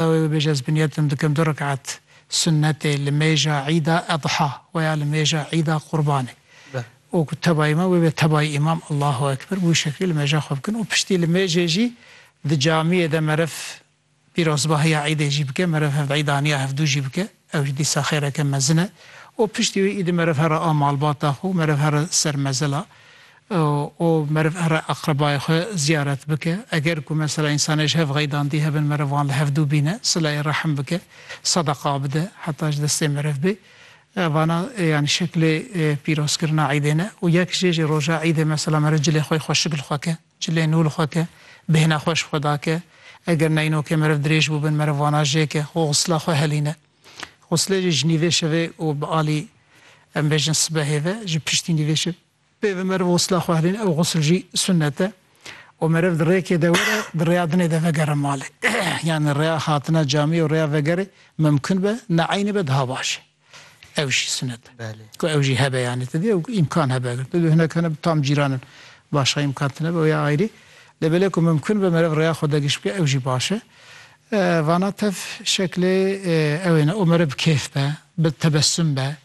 Dawê bibêje ez bi niyetim dikim du reket sunnetê li mêja îda edha we ya li mêja îda qurbanê. Û ku tebayî me wê bê tebayî îmam Allahu ekber bi wî şeklî li mêja xwe bikin û piştî li mêjê jî di camiyê de meriv pîrozbahiya îdê jî bike meriv hevîdaniya hevdû jî bike. Ew ji dîsa xêreke mezin e û piştî wî îdî meriv here a malbata xwe û meriv here ser mezila û meriv here aqrebayê xwe ziyaret bike. Eger ku mesela însanê ji hev xeydandî hebin meriv wan li hev dû bîne, silayê rehm bike, sedeqa bide heta ji destê meriv bê. Vana yanî şeklê pîrozkirina îdê ne û yek jê jî roja îdê mesela meriv cilê xwe yê xweşik li xwe ke. Çilê nû li xwe ke, bêhna xwe ji xwe dake. Eger neyno ke meriv dirêj bû bin, meriv wana jê ke xwe xusla xwe helîne. Xuslê jî ji nîvê şevê û bi alî em bêjin sibehê ve ji piştî nîvê şevê pê ve meriv xusla xwe helîne. Ew xusl jî sunet e û meriv di rêkê de were, di rêya dinê de vegere malê. Yanî rêya hatina camî û rêya vegerê mimkun be, ne eynî be daha baş e. Ev jî sinet ku ew jî hebe yanî tu dê û îmkan hebe eger tu dê hinek hene bi tam cîran in başa îmkan tune be ya ayrî lê belê ku mimkun be meriv rêya xwe dagiş bike ew jî baş e. Vana tev şeklê ew ê ne û meriv bi kêf be, bi tebesum be,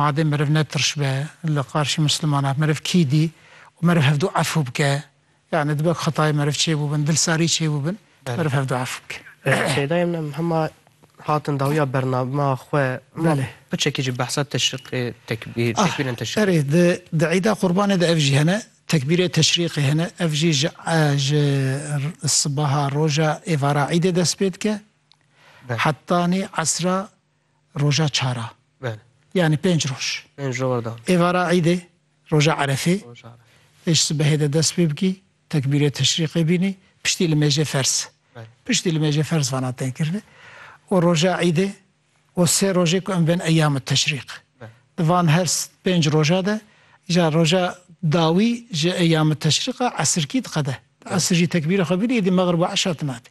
madê meriv ne tirş be li qarşî mislimanan meriv kî dî û meriv hevdu efû bike Yanî dibe ku xetayê meriv çêbûbin, dilsarî çêbûbin, meriv hev du ef bike. Şeyda em nem hema hatin dawiya bername xwe hema piçekî jî behsa teşriqê tekbîr tekbîrên teşriq. Ah erê di di îda qurbanê de ev jî hene tekbîrê teşriqê hene ev jî ji ji sibaha roja êvara îdê dest pê dike hetanî esra roja çar a. Belê. Yanî pênc roj. Pênc roj war dan. Êvara îdê, roja Erefê. Roja Erefê. Tê ji sibehê de dest pê bikî, tekbîrê teşrîqê bînî, piştî li mêjê ferz. Belê. Piştî li mêjê ferz vana tên kirinê. Û roja îdê û sê rojê ku em bên eyyam teşrîq. Belê. Di van her pênc roja de îcar roja dawî ji eyyam teşrîq a esirkî diqede. Di esir jî tekbîrê xwe bînî, îdî megrib û eşa tune dî.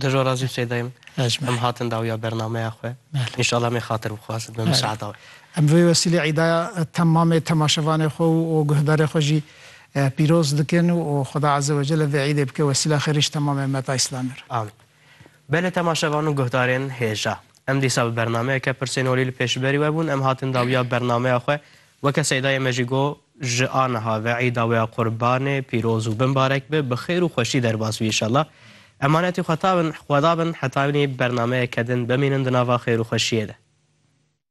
Di jo ra jî Sêdayê min em hatin dawiya bernameya xwe. Înşallah em ê xatir bixwazin bi miseada wê. Em bi vê wesîlê îdaya temamê temaşevanê xwe û guhdarê xwe jî pîroz dikin û Xweda Eze Wecelle vê îdê bike wesîla xêrî ji temamê meta îslamê re. Amîn. Belê temaşevan û guhdarên hêja. Em dîsa bi bernameyeke pirsên holî li pêşberî we bûn, em hatin dawiya bernameya xwe Weke Seydayê me jî got, ji a niha ve Îda wê ya Qurbanê pîroz û bimbarek be, bi xêr û xweşî derbas bî înşallah. Emanetî xwe ta bin xweda bin heta hînî bernameyeke din bimînin di nava xêr û xweşiyê de.